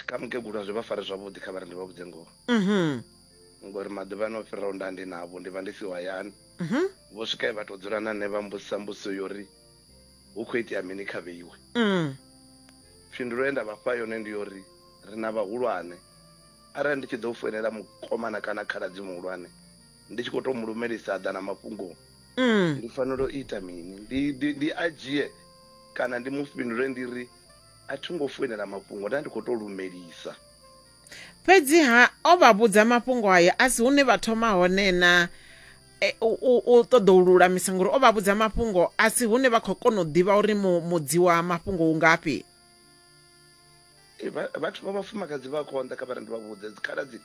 Kha mukegulu a zwi vha fari zwavhuḓi kha vha ri ndi vha vhudze ngoho ngori maḓuvhani o fhiraho nda ndi navho ndi vha ndi siho hayani vho swika vha tou dzula na nṋe vha mbudzisa mbudziso yo ri hu khou itea mini kha vheiwe phindulo ye nda vha fha yone ndi yo ri ri na vhahulwane arali ndi tshi ḓo foinela mukomana kana khaladzi muhulwane ndi tshi khou tou mu lumelisa a ḓa na mafhungo ndi fanela u ita mini ndi a dzhie kana ndi mu fhindule ndi ri A thi ngo foinela mafhungo, nda ndi khou tou lumelisa. Fhedzi-ha, o vha vhudza mafhungo ayo a si hune vha thoma hone na u ṱoḓa u lulamisa, ngauri o vha vhudza mafhungo a si hune vha khou kona u ḓivha uri mudzi wa mafhungo u ngafhi. Vhathu vha vhafumakadzi vha konḓa kha vha ri ndi vha vhudze dzikhaladzi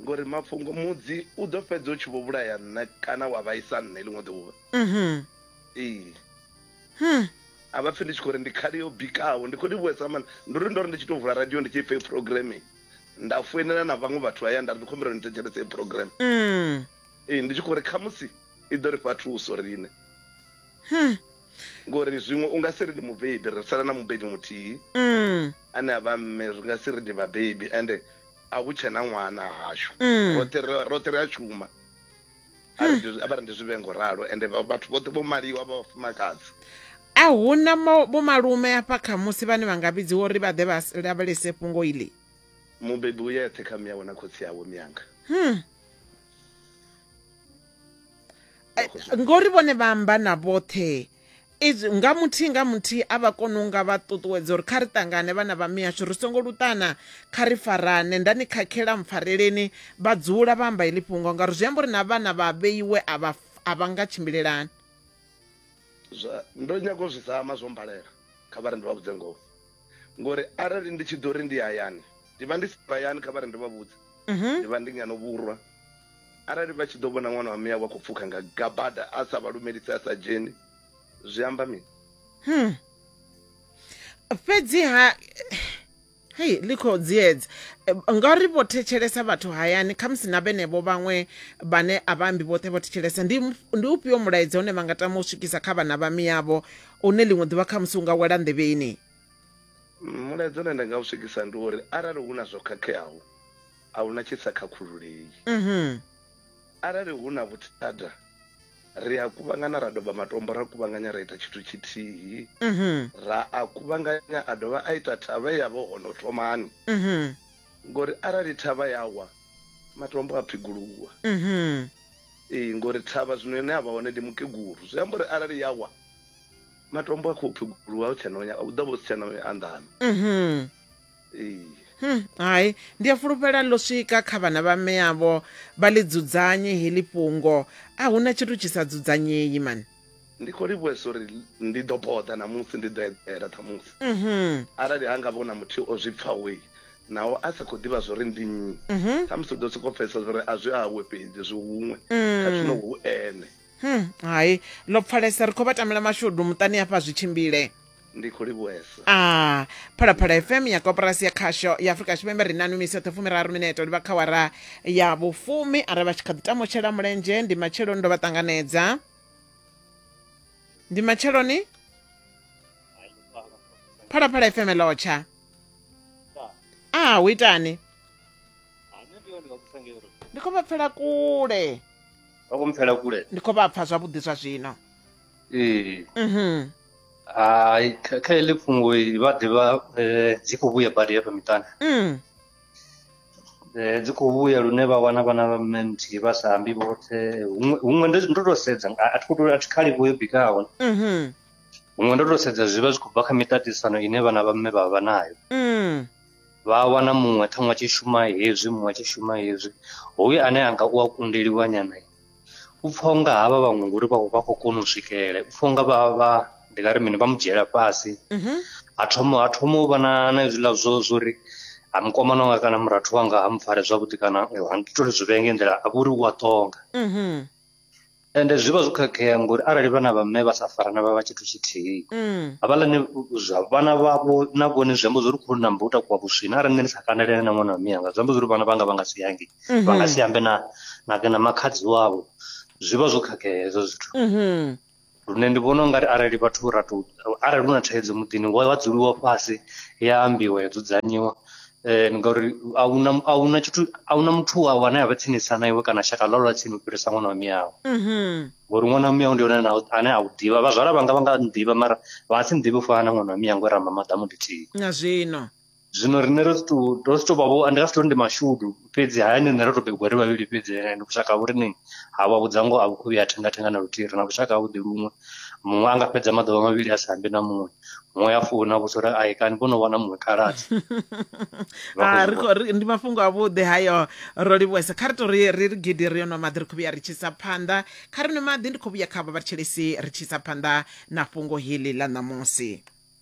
ngori mafhungo mudzi u ḓo fhedza u tshi vho vhulaya nṋe kana wa vhaisa nṋe ḽiṅwe ḓuvha. Ee. Hmm. a vha pfi ndi tshi khou ri ndi khali yo bikaho ndi khou ni vhuesa mani ndi uri ndo ri ndi tshi tou vula radio ndi tshi ipfa programme nda foinela na vhaṅwe vhathu haya nda ri ndi khombela ni thetshelese i programme mm. ee ndi tshi khou ri khamusi i ḓo ri fha thuso riṋe hmm. ngori zwiṅwe u nga si ri ndi mubebi ri sala na mubebi muthihi mm. ane a vha mme ri nga si ri ndi vhabebi ende a hu tshena ṅwana hashu mm. roṱhe ri a shuma Hmm. a vha ri ndi zwi vhe ngo ralo ende vhathu vhoṱhe vho maliwa vha vhafumakadzi a hu na vhomalume hafha khamusi vhane vha nga vhidziwa uri vha ḓe vha lavhelese fhungo iḽi mubebi u yeṱhe kha miyawe na khotsi yawe miyanga hmm. ngori vhone vha amba na vhoṱhe Izwi nga muthihi nga muthihi a vha kona u nga vha ṱuṱuwedza uri kha ri ṱangane vhana vha mihashu ri songo luṱana kha ri farane nda ni khakhela mpfareleni vha dzula vha amba heḽi fhungo ngauri zwi amba uri na vhana vha vheiwe a vha a vha nga tshimbilelani. Zwa, ndo nyaga u zwi zama zwo mmbalela, kha vha ri ndi vha vhudze ngoho. ngori arali ndi tshi ḓo ri ndi hayani ndi vha ndi si hayani kha vha ri ndo vha vhudza mhm. ndi vha ndi ngano vhurwa arali vha tshi ḓo vhona ṅwana wa miya wa khou pfukha nga gabada a sa vha lumelisi a sa dzheni zwi amba mini hmm. fhedziha hei ḽi khou dziedza ngauri vho thetshelesa vhathu hayani khamusi na vhenevho vhaṅwe vhane a vha ambi vhoṱhe vho thetshelesa ndi ufhio mulaedza une vha nga tama u swikisa kha vhana vha miyavho une ḽiṅwe ḓuvha khamusi u nga wela nḓevheni. Mulaedza une nda nga u swikisa ndi uri arali hu na zwo khakheaho, a hu na tshi sa khakhululei. Arali hu na vhuthada, ri a kuvhangana ra doba matombo ra kuvhanganya ra ita tshithu tshithihi, ra a kuvhanganya a dovha a ita thavha ye ya vha hone u thomani. ngori arali thavha ya wa matombo a phiguluwa mhm ee ngori thavha zwino ine avha hone ndi mukegulu zwi amba uri arali ya wa matombo a khou phiguluwa hu tshena nya u ḓo vha si tshena anḓano mhm ee Hmm, hai ndi a fulufhela ḽo swika kha vhana vha mme avho vha ḽi dzudzanye heḽi fhungo a huna tshithu tshi sa dzudzanyei man Ndi khou livhuhesa uri ndi ḓo boḓa ṋamusi, ndi ḓo eḓela ṱhamusi. Arali ha nga vha hu na muthihi o zwi pfaho naho a sa khou ḓivha zwa uri ndi nnyi, ṱhamusi u ḓo sokou pfesesa zwa uri a zwi awe fhedzi, zwi huṅwe, kha zwino hu ene. Hai, ḽo pfalesa. Ri khou vha tamela mashudu muṱani hafha zwi tshimbile. ndi khou livhuesa a ah, phalaphala fm ya koporasi ya khasho ya afurika tshipembe ri na numiso ṱhofu miraru mineto ndi vha kha wara ya vhufumi are vha tshi kha ḓi tamutshela mulenzhe ndi matsheloni ndo vha ṱanganedza ndi matsheloni phalaphala fm lotsha a ah, hu itani ndi khou vha pfela kule ndi khou vha pfa zwavhuḓi zwa zwino ee mhm. hai kha kha heḽi fhungo i vha ḓivha eh, dzi khou vhuya badi hafha miṱani mm. Eh, dzi khou vhuya lune vha wana vhana vha mme nthihi vha sa ambi vhoṱhe huṅwe huṅwe ndo ndo tou sedza a a thi khou tou a thi khali vho yo bikaho mhm, huṅwe ndo tou sedza zwi vha zwi khou bva kha miṱaṱisano ine vhana vha mme vha vha nayo mm. vha wana muṅwe ṱhaṅwe a tshi shuma hezwi muṅwe a tshi shuma hezwi hoyu ane anga u a kundeliwa nyana u pfha unga havha vhaṅwe ngori vha vha khou kona u swikelela u pfha unga vha vha ndi nga ri mini vha mu dzhiela fhasi Mhm. ha thoma ha thoma u vha na na hezwiḽa zwo zwo ri ha mukomana wanga kana murathu wanga ha mupfare zwavhuḓi kana eh, ha ndi tole zwi vhee nge nḓila a vha uri u a ṱonga Mhm. ende zwi vha zwo khakhea ngori arali vhana vha mme vha sa farana vha vha tshithu tshithihi Mm. havhaḽani zwa vhana vhavho na vhone zwi amba zwo ri khou namba u takuwa vhuswina arali nṋe ndi sa kandelene na ṅwana wa miyanga zwi amba zwo ri vhana vhanga vha nga si yange vha nga si ambe na na na makhadzi wavho zwi vha zwo khakhea hezwo zwithu lune ndi vhona ungari arali vhathu ra to arali hu na thaidzo muḓini wa wa dzuliwa fhasi ya ambiwa ya dzudzanyiwa eh ngauri ahuna ahuna tshithu ahuna muthu wa wane a vha tsinisa na iwe kana shaka ḽo lwa tsini u fhirisa ṅwana wa miyawe ngori ṅwana wa miyawe ndi yone na- ane a u ḓivha vhazwala vhanga vha nga nḓivha mara vha nga si nḓivhe u fana na ṅwana wa miyawe ngori ramba maḓamu ḽithihi na zwino zwino riṋe ro si tou ro si tou vha vho ndi nga si tou ndi mashudu fhedzi hayani riṋe ro tou bebiwa ri vhavhili fhedzi ndi vhushaka ha vhori ni ha vha vhudza ngoho a vhu khou vhuya thenga thenga na luthihi ri na vhushaka havhuḓi luṅwe muṅwe a nga fhedza maḓuvha mavhili a sa ambi na muṅwe muṅwe ya founa vhusa uri ai kani vho no wana muṅwe khaladzi ah, ndi mafhungo avhuḓi hayo ro livhuwesa kha ri to ri ri gidi ri yo nwa maḓi ri khou vhuya ri tshisa phanḓa kha ri nwe maḓi ndi khou vhuya kha vha vhatshelesi ri tshisa phanḓa na fhungo heḽi ḽa ṋamusi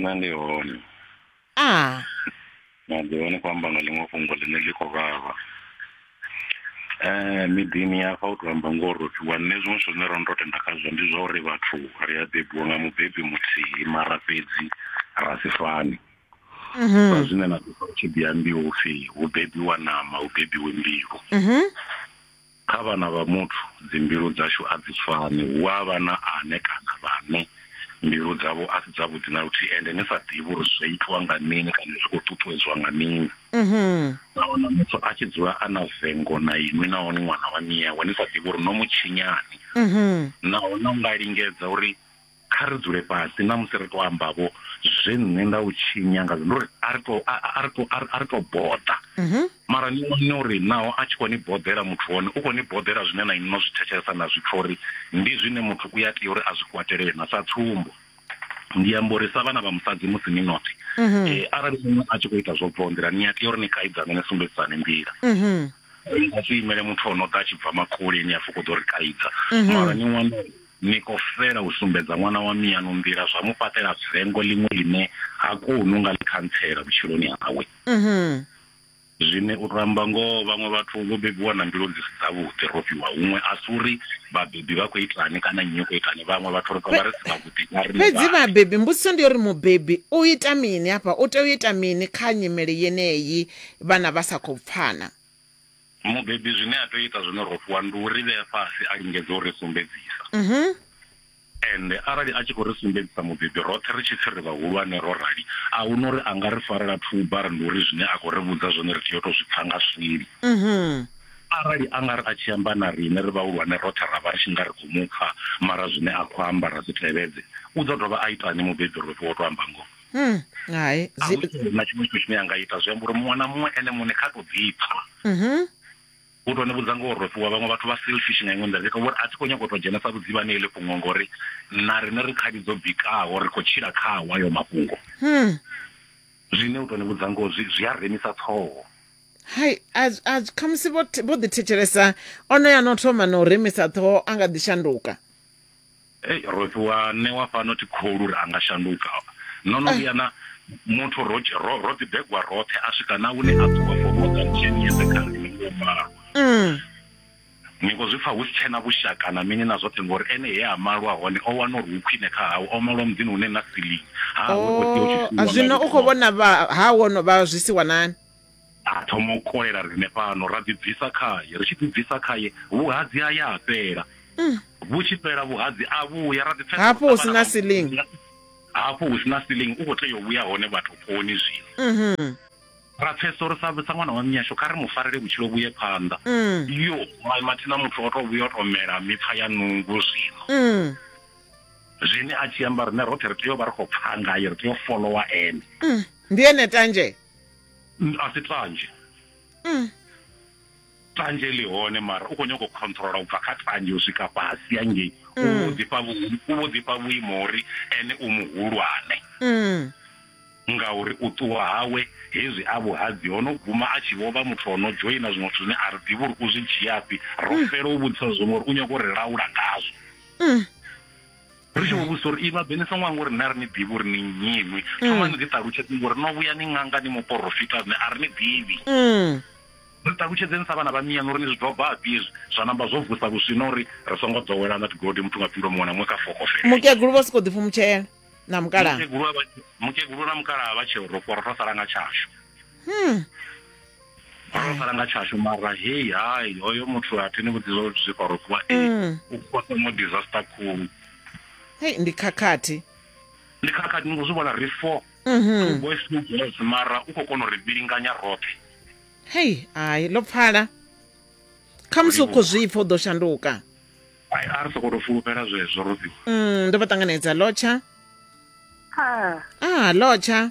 nṋe ndi hone a na ḓi hone kho amba nga ḽiṅwe fhungo ḽine ḽi khou vhavha um miḓini hafha u to amba ngoho ro fhiwa nṋe zwiṅwe zwithu zwine ro no to tenda khazwo ndi zwa uri vhathu ri a bebiwa nga mubebi muthihi mara fhedzi ra si fani sa zwine na ḓisa u tshi ḓi ambiwa upfhi hu bebiwa ṋama hu bebiwe mbilu Kha vhana vha muthu, dzimbilu dzashu a dzi fani. Hu a vha na ane kana vhane mbilu dzavho a si dzavhuḓi na luthihi ende ni sa ḓivhi uri zwo itwa nga mini kana zwi khou ṱuṱuwedzwa nga mini. Na wana muthu a tshi dzula a na vengo na inwi naho ni ṅwana wa nnyi yawe ni sa ḓivhi uri no mu tshinyani. Naho no nga lingedza uri. kha ri dzule fhasi na musi ri to amba vho zwe nṋe nda u tshinya nga ndo ri a ri to a ri to a ri to boḓa mhm. mara ni wane uri naho a tshi kho ni boḓela muthu hone u kho ni boḓela zwine na inno zwi thetshelesa na zwi pfha uri ndi zwine muthu u ya tea uri a zwi kwatelele na sa tsumbo ndi amba uri sa vhana vha musadzi musi ni nothi mhm. eh, arali muṅwe a tshi kho ita zwo bvaho nḓila ni a tea uri ni kaidzane ni sumbedzisane nḓila mhm. a si imele muthu o no ḓa a tshi bva makule ni a fho kho ḓo ri kaidza mara ni wane Ni khou fela u sumbedza ṅwana wa mianu nḓila zwa mu fhaṱela vengo ḽiṅwe ḽine ha koni u nga ḽi khantsela vhutshiloni hawe. Zwine u tou amba ngoho, vhaṅwe vhathu vho bebiwa na mbilu dzi si dzavhuḓi. Ro fhiwa huṅwe, a si uri vhabebi vha khou itani kana nnyi u khou itani, vhaṅwe vhathu ri tou vha ri si vhavhuḓi nga riṋe Fhedzi vhaṋe. vhabebi, mbudziso ndi ya uri mubebi u ita mini hafha? U tea u ita mini kha nyimele yeneyi vhana vha sa khou pfana? Mubebi zwine a tea u ita zwone ro fhiwa ndi u ri vhea fhasi a lingedza u ri sumbedzisa mhm. ende arali a tshi khou ri sumbedzisa mubebi roṱhe ri tshi pfi ri vhahulwane ro rali a hu na uri a nga ri farela thuba ri ndi uri zwine a khou ri vhudza zwone ri tea u tou zwi pfa nga swili mhm. arali a nga ri a tshi amba na riṋe ri vhahulwane roṱhe ra vha ri tshi nga ri khou mu pfa mara zwine a khou amba ra zwi tevhedze u ḓo dovha a itani mubebi ro fhiwa u tou amba ngoho Mm, hai a zwi- hu na tshiṅwe tshithu tshine a nga ita zwi amba uri muṅwe na muṅwe ene muṋe kha to ḓipfa Mhm. u to ni vhudza ngo rofhiwa vhaṅwe vhathu vha selfish nga iṅwe nḓila zwi ita uri a thi khou nyanga u to dzhenesa vhudzivhani heḽi fhungo ngori na riṋe ri khadi dzo bikaho ri khou tshila khawo ayo mafhungo Hmm. zwine u to ni vhudza ngoho zwi zwi a remisa ṱhoho hai a zwi- a zwi- khamusi vho the- vho ḓithetshelesa onoyo ano thoma na u remisa ṱhoho a nga ḓi shanduka Ei ro fhiwa ṋewa fhano thi kholwi uri a nga shanduka. No no vhuya na muthu ro ro ro ḓi begwa roṱhe a swika na hune a ṱuwa for more than 10 years kha ri ni ngo malwa. Ni ngo zwi pfa hu si tshena vhushaka na mini na zwoṱhe ngori ene he a malwa hone o wana uri hu khwine kha hawe o malwa muḓini hune na ceiling ha we o tea u tshi. Zwino u kho vhona vha ha wo no vha zwi si wanani. a thoma u kolela riṋe fhano ra ḓibvisa khaye ri tshi ḓibvisa khaye vhuhadzi ha ya a fhela mm. vhu tshi fhela vhuhadzi a vhuya ra ḓipfesa hafho hu sina ceiling hafho hu sina ceiling u khou tea u vhuya hone vhathu koni zwino mhm. ra pfesa uri sa ṅwana wa minyasho kha ri mu farele vhutshilo vhuye phanḓa mm. yo mathina muthu o to vhuya o to mela mipfa ya nungu zwino mm. zwine a tshi amba rine roṱhe ri tea u vha ri khou pfha ngaye ri tea u folowa ene ndi ene tanje a si tanzhe mm. tanzhe ḽi hone mara u khou nyanga u controla u bva kha tanzhe u swika fhasi yangei u mm. vho ḓifha u vho ḓifha vhuimo uri ene u muhulwane mm. ngauri u ṱuwa hawe hezwi a vhuhadzi ho no guma a tshi vho vha muthu o no dzhoina zwiṅwe zwithu zwine a ri ḓivhi uri u zwi dzhiafhi ro mm. fela u vhudzisa zwiṅwe uri u nyanga u ri laula ngazwo mm. ri tshi vho vhudzisa uri i vhaḓe ni songo anga uri nṋe a ri ni ḓivhi uri ni nnyi inwi mm. thoma ni ḓi ṱalutshedze ngori no vhuya ni ṅanga ni muporofita nṋe a ri ni ḓivhi mm. ri ṱalutshedzeni sa vhana vha miyanu uri ni zwi dobafhi hezwi zwa namba zwo vusa vhuswina uri ri songo ḓowelana tigodi muthu nga phindulo muṅwe na muṅwe kha fokofele mukegulu vha sokou ḓifhumutshela na mukalaha mukegulu na mukalaha vha tsheo ro fhoro ro sala nga tshashu Hmm. Vha fara nga tshashu mara hey hai hoyo muthu a thini vhudziwa uri zwi khou rokiwa eh Mm. u khotsa mo disaster khulu. Hey, ndi khakhathi. Ndi khakhathi ni khou zwi vhona ri four. Mhm. Boys two girls mara u khou kona u ri vhilinganya roṱhe. Hey, ai ḽo pfala. Khamusi u khou zwi pfa u ḓo shanduka. Ai a ri sokou tou fulufhela zwezwo Rodziwa. Mm, ndo vha ṱanganedza lotsha. Ah, Ah, lotsha.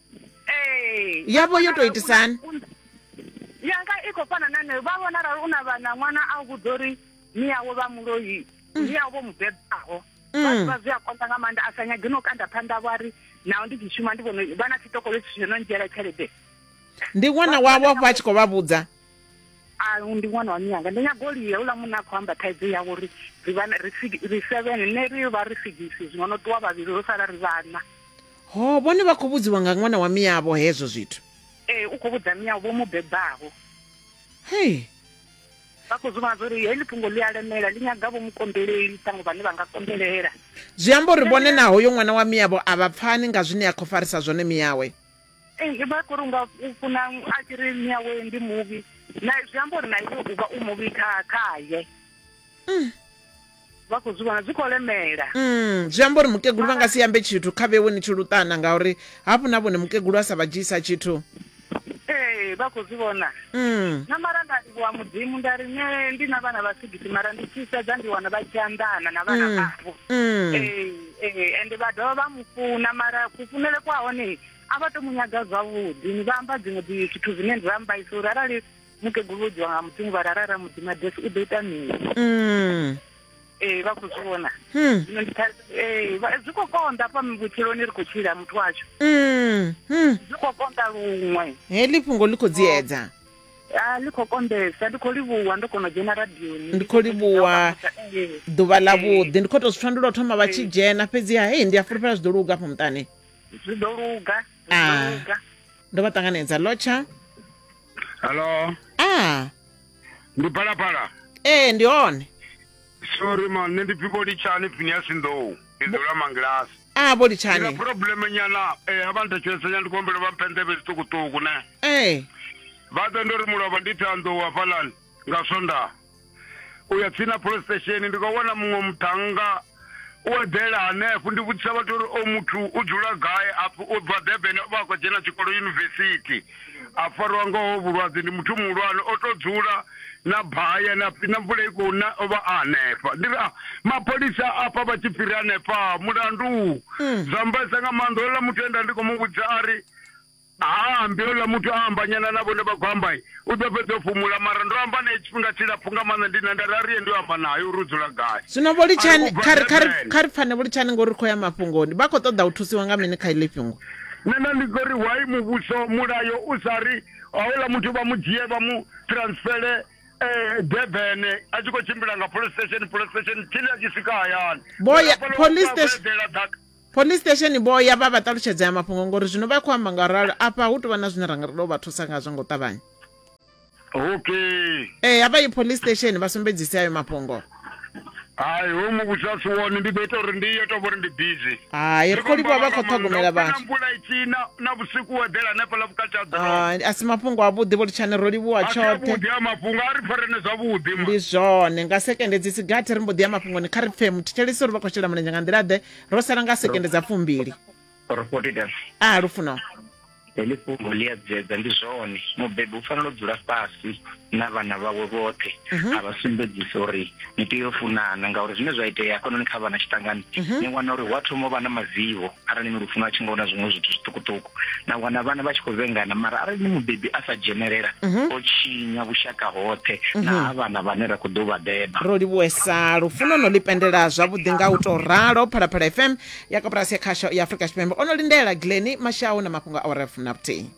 Ee. Ya vho yo tou itisa hani? yanga i khou fana na nayo vha vhona arali u na vhana ṅwana a u vhudza uri ni yawo vha muloi ni yawo vho mu bebaho Mm. vha ḓivha zwi a konḓa nga maanḓa a sa nyagi no kanda phanḓa vho ari naho ndi tshi shuma ndi vhono vha na tsitokolo tshi no ndzhiela tshelede Ndi ṅwana wavho afho a tshi khou vha vhudza. a ndi ṅwana wa mianga ndi nyago lia uḽa munna a khou amba thaidzo yavho uri ri seven ne ri vha ri sigisi zwino no ṱuwa vhavhili ro sala ri vhana ho vhone vha khou vhudziwa nga ṅwana wa miyavho hezwo zwithu ee u khou vhudza miyavho vho mu bebaho hei vha khou zwi zwo uri heḽi fhungo ḽi a lemela ḽi nyaga vho mukonḓeleli ṱhaṅwe vhane vha nga konḓelela zwi amba uri vhone na hoyo ṅwana wa miyavho a vha pfani nga zwine a khou farisa zwone miyawe Ee, zwi bva khori unga u funa a tshi ri mme awe ndi muvhi na zwi amba uri na iwe u vha u muvhi kha khaye mm. vha khou zwi vhona zwi khou lemela mm, zwi amba uri mukegulu vha nga si ambe tshithu kha vhewe ni tshi luṱana ngauri hafhu na vhone mukegulu a sa vha dzhiisa tshithu ee vha khou zwi vhona mm. na mara nda livhuwa mudzimu nda ri ne ndi na vhana vha sigisi mara ndi tshi sedza ndi wana vha tshi anḓana na vhana mm. vhavho mm. ee Ee, ende vha dovha vha mu funa mara kufunele kwa hone a vha to mu nyaga zwavhuḓi ni vha amba dziṅwe dzi zwithu zwine ndi vha mbaisa uri arali mukegulu vhodziwa nga mudzimu vha rara ra mudzima desi u ḓo ita mini Mm. ee vha khou zwi vhona Hmm. zwino ndi kha- ee vha- zwi khou konḓa fha vhutshiloni ri khou tshila muthu washu Mm. Mm. zwi khou konḓa luṅwe Heḽi fhungo ḽi khou dziedza. a ḽi khou kombesa ndi khou livhuwa ndo kona u dzhena radioni ndi khou livhuwa ḓuvha ḽa vhuḓi ndi khou tou zwi pfa ndi lwo thoma vha tshi dzhena fhedziha hei ndi a fulufhela zwi ḓo luga afho muṱani zwi ḓo luga ah. ndo vha ṱanganedza lotsha hallo a ndi phalaphala ee ndi hone sorry ma nṋe ndi piko litshani phineasi nḓou ndi dzula mangilasi a vho litshani ina probleme nyana eh, a vha nthetshelese nyana ndi khou humbela vha mphe nḓevhe zwiṱukuṱuku ne ee vha ḓe ndo ri mulovha ndi thanḓou hafhaḽani nga swondaha u ya tsini na police station ndi khou wana muṅwe muthannga u eḓela hanefho ndi vhudzisa vhathu uri o muthu u dzula gai apfi u bva durban vha a khou dzhena tshikolo yunivesithi a farwa nga ho vhulwadze ndi muthu muhulwane o to dzula na baya na na mvula i khou na ovha a hanefha ndi ra mapholisa afha vha tshi fhiri hanefha mulandu mm. zwa mbaisa nga maanḓa ola muthu enda ndi khou mu vhudza a ri haambi ola muthu a ambanyana na vhone vha khou amba u ḓo fhedza u fhumula mara ndo amba naye tshifhinga tshilapfhu nga maanḓa ndi na nda rariye ndi amba naye uri u dzula gai zwino vho litshani kha ri pfane vho litshani ngori ri khou ya mafhungoni vha khou ṱoḓa u thusiwa nga mini kha iḽi fhungo nṋe nda ndi ḓo ri why muvhuso mulayo u sa ri houḽa muthu vha mu dzhie vha mu transfele um durban a tshi khou tshimbila nga police station police station tshili a tshi swika hayani police station vho ya vha vha ṱalutshedza ya mafhungo ngori zwino vha khou amba nga ralo afha hu tou vha na zwine ra nga ri tou vha thusa ngazwo nga u ṱavhanya okay ee hafha i police station vha sumbedzise ayo mafhungo hai ho muvhudza si wone ndi ḓo ita uri ndi yo tou vhori ndi busy hai ri khou livhuwa vha khou ṱhogomela vhathu mvula itshina na vhusiku wo eḓela hanefha ḽa vhukati ha ḓorobo a si mafhungo avhuḓi vho litshani ro livhuwa tshoṱhe vhuḓi ha mafhungo a ri pfarene zwavhuḓi ndi zwone nga sekende dzi sigathi ri mbo ḓi ya mafhungoni kha ri pfhe muthetshelisi uri vha khou shela mulenzhe nga nḓila ḓe ro sala nga sekende dza fumbili porofoti dam a lufuno heḽi fhungo ḽi a dzedza ndi zwone mubebi u fanela u dzula fhasi na vhana vhawe vhoṱhe a vha sumbedzisa uri ni tea u funana ngauri zwine zwa itea hafhanoni kha vhana tshiṱangani ni wana uri hu a thoma u vha na mavivho arali ni lufuno a tshi nga wana zwiṅwe zwithu zwiṱukuṱuku na wana vhana vha tshi khou vhengana mara arali ni mubebi a sa dzhenelela o tshinya vhushaka hoṱhe na ha vhana vhane ra khou ḓo vha beba ro livhuwesa lufuno no ḽi pendela zwavhuḓi nga u tou ralo phalaphala fm ya koporasi ya khasho ya afurika tshipembe o no lindela gleni mashau na mafhungo a oref na vhuthihi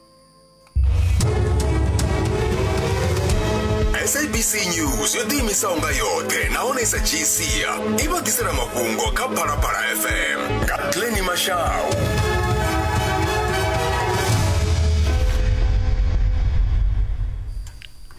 sabc news yo ḓiimisaho nga yoṱhe nahone i sa dzhii sia i vha ḓisela mafhungo kha phalaphala fm nga gleni mashau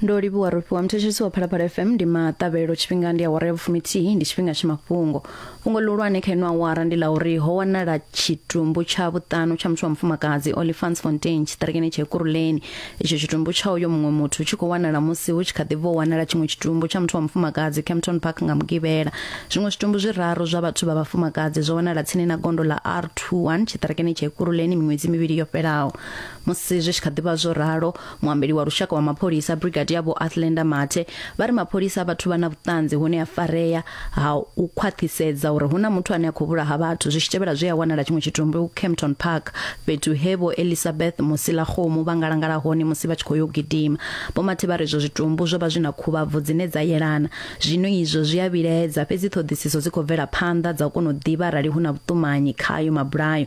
ndo livhuwa rofhiwa muthetshelesi wa phalaphala fm ndi maṱavhelo tshifhinga ndi awara ya vhufumithihi ndi tshifhinga tsha mafhungo fhungo ḽihulwane kha ino awara ndi ḽa uri ho wanala tshitumbu tsha vhuṱanu tsha muthu wa mufumakadzi olifans fontain tshiṱirikini tsha ekuruleni itsho tshitumbu tsha uyo muṅwe muthu tshi khou wanala musi hu tshi kha ḓi bva u wanala tshiṅwe tshitumbu tsha muthu wa mufumakadzi campton park nga mugivhela zwiṅwe zwitumbu zwiraru zwa vhathu vha vhafumakadzi zwo wanala tsini na gondo ḽa r21 tshiṱirikini tsha ekuruleni miṅwedzi mivhili yo fhelaho Musi zwi tshi kha ḓivha zwo ralo, muambeli wa lushaka wa mapholisa Brigadier Vho Athlenda Mathe vha ri mapholisa a vha thu vha na vhuṱanzi hune a farea ha u khwaṱhisedza uri hu na muthu ane a khou vhulaha vhathu zwi tshi tevhela zwe a wanala tshiṅwe tshitumbu Kempton Park fhethu he Vho Elisabeth Musilakgomo vha ngalangala hone musi vha tshi khou yo gidima. Vho Mathe vha ri izwo zwitumbu zwo vha zwi na khuvhabvu dzine dza yelana. Zwino izwo zwi a vhilaedza fhedzi ṱhoḓisiso dzi khou bvela phanḓa dza u kona u ḓivha arali hu na vhuṱumanyi khayo mabulayo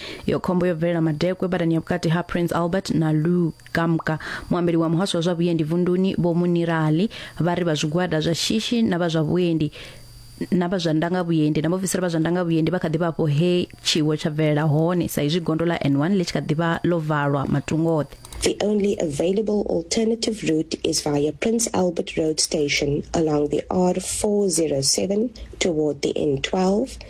iyo khombo yo bvelela madekwe badani ya vhukati ha prince albert na lugamka muambeli wa muhasho wa zwa vhuendi vunduni vho munirali vha ri vha zwigwada zwa shishi na vha zwa vhuendi na vha zwa ndanga vhuendi na vhaofisiri vha zwa ndanga vhuendi vha kha ḓi vha afho he tshiwo tsha bvelela hone sa izwi gondo ḽa n1 ḽi tshi kha ḓi vha ḽo valwa matungo oṱhe The only available alternative route is via Prince Albert Road Station along the R407 toward the N12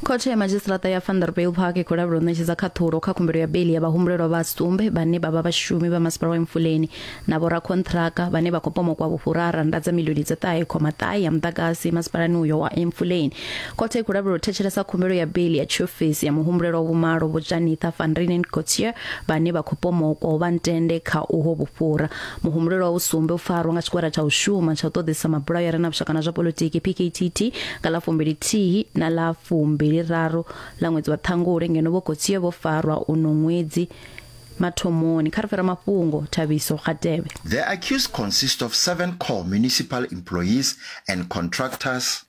khothe ya madzhisiṱiraṱa ya vanderbilt park i khou lavhelwa u ṋetshedza khaṱhulo kha khumbelo ya beli ya vhahumbulelwa vha sumbe vhane vha vha vhashumi vha masipala wa emfuleni na vhorakhonṱhiraka vhane vha khou pomokwa vhufhurara nda dza milioni dza ṱahe khoma ṱahe ya muḓagasi masipalani uyo wa emfuleni khothe i khou lavhelwa u thetshelesa khumbelo ya beli ya tshiofisi ya muhumbulelwa vhumalo vho janitha van renen cotier vhane vha khou pomokwa u vha ntende kha uho vhufhura Muhumbulo wa vhusumbe u farwa nga tshigwada tsha u shuma tsha u ṱoḓisa mabulayo a re na vhushaka na zwa politiki PKTT nga ḽa fumbili thihi na ḽa fumbili raru ḽa ṅwedzi wa ṱhangule ngeno vho khotsie vho farwa uno ṅwedzi mathomoni kha ri fhira mafhungo thabiso kgatevhe The accused consist of seven core municipal employees and contractors.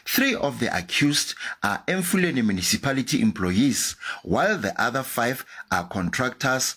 Three of the accused are Emfuleni municipality employees, while the other five are contractors.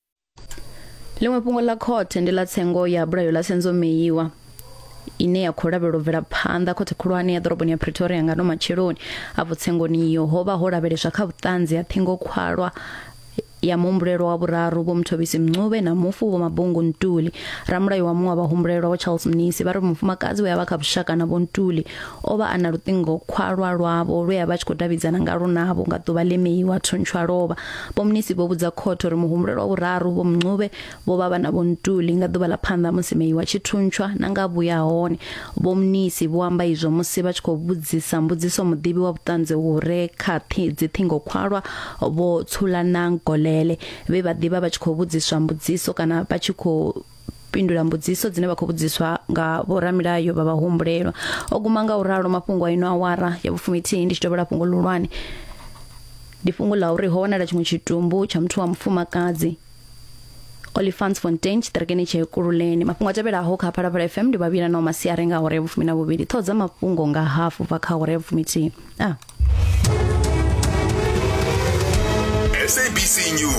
ḽiṅwe fhungo ḽa khothe ndi ḽa tsengo ya bulayo ḽa senzo meiwa ine ya khou lavhelwa u bvela phanḓa khothe khulwane ya ḓoroboni ya pretoria nga no matsheloni afho tsengoni iyo ho vha ho lavheleswa kha vhuṱanzi ha thingo khwalwa ya muhumbulelwa wa vhuraru vho muthobisi mncube na mufu vho mabungu ntuli ramulayo wa muṅwe wa vhahumbulelwa wa charles mnisi vha ri mufumakadzi we a vha kha vhushaka na vho ntuli o vha a na luṱingo khwalwa lwavho lwe a vha a tshi khou davhidzana nga lunavho nga ḓuvha ḽe meiwa thuntshwa lovha Vho Mnisi vho vhudza khothe uri muhumbulelwa wa vhuraru, Vho Mncube, vho vha vha na Vho Ntuli nga ḓuvha ḽa phanḓa musi Meyiwa a tshi thuntshwa na nga vhuya ha hone. Vho Mnisi vho amba izwo musi vha tshi khou vhudzisa mbudziso muḓivhi wa vhuṱanzi hu re kha dziṱhingokhwalwa Vho Tshulanang Golele, vhe vha ḓivha vha tshi khou vhudziswa mbudziso kana vha tshi khou fhindula mbudziso dzine vha khou vhudziswa nga vhoramilayo vha vhahumbulelwa o guma nga u ralo mafhungo a ino awara ya vhufumithihi ndi tshi tovhela fhungo ḽihulwane ndi fhungo ḽa uri ho wanala tshiṅwe tshitumbu tsha muthu wa mufumakadzi Olifants Fontaine tshiṱirikini tsha Ekurhuleni mafhungo a tevhelaho kha Phalaphala FM ndi vhavhila na masiari nga hore vhufumi na vhuvhili ṱhoho dza mafhungo nga hafu bva kha hore vhufumi thihi ah SABC News